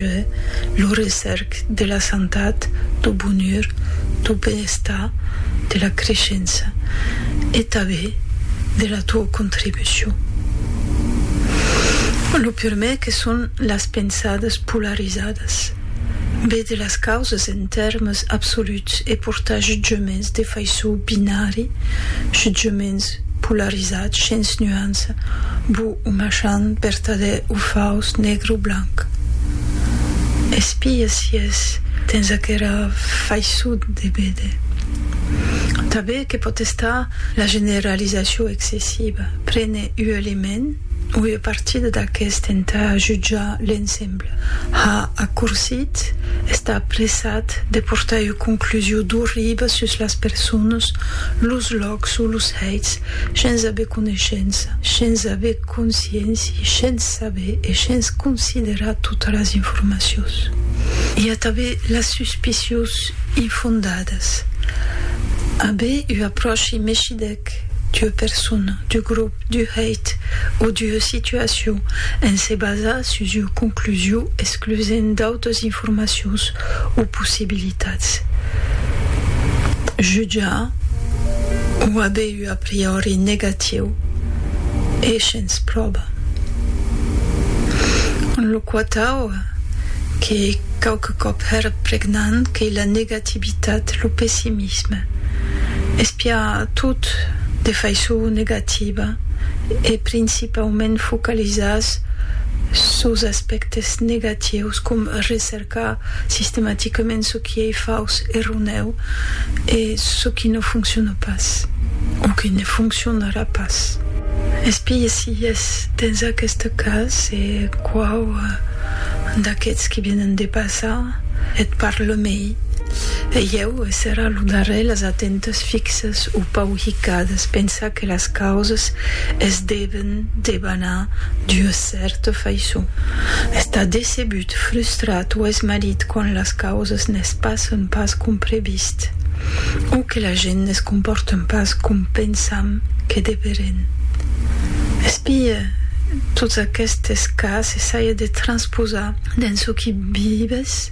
que lo recèrc de la santat, do bonur, do benestar, de la creishença e tabé de la tua contribucion. Lo purmé que son las pensadas polarizadas, be de las causas en tèrmes absoluts e portar jutjaments de faiçon binari, jutjaments polarizat shens nuança, bu o machan, vertadèr o faus, negre o blanc. Espia si es dens aquera faisson de véder. Tanben que pòt estar la generalizacion excessiva, prene ua element o ua partida d'aqueste entà jutjar l'ensemble, ha accorsit, estar apressat de portar ua conclusion d'orriba sus las personas, los lòcs, Òc sus los hèits, shens aver coneishença, shens aver consciéncia e shens saber e shens considerar totas las informacions. I a tanben las suspicions infondadas. Aver ua apròchi meshidèc d'ua persona, d'u grop, d'u hèit o d'ua situacion en se basar sus ua conclusion exclusent d'autas informacions o possibilitats. possibilitats. Jutjar o aver un a priori negatiu e shens pròba. Lo quatau, qu'ei quauque còp hèr pregnant, qu'ei la negativitat, lo pessimisme. Espiar tot de faiçon negativa e principaument focalizar sos aspèctes negatius, com recercar Ca sistematicament çò qui ei fauç, erronèu, es çò qui no fonciona pas, o que ne foncionarà pas. Espigue si es dens aqueste cas e quau d'aqueths qui vienen de passar et parle mei. E ieu, e serà lo darrèr, las atentas fixas o pauhicades, pensar que las causas es deven debanar d'ua. cèrta faiçon, estar decebut, frustrat o esmarit quand las causas ne's passen pas com previst o que la gent ne's comporten pas com pensam que deverén. Espie, tots aquestes cas, essaia de transposar dens çò qui vives.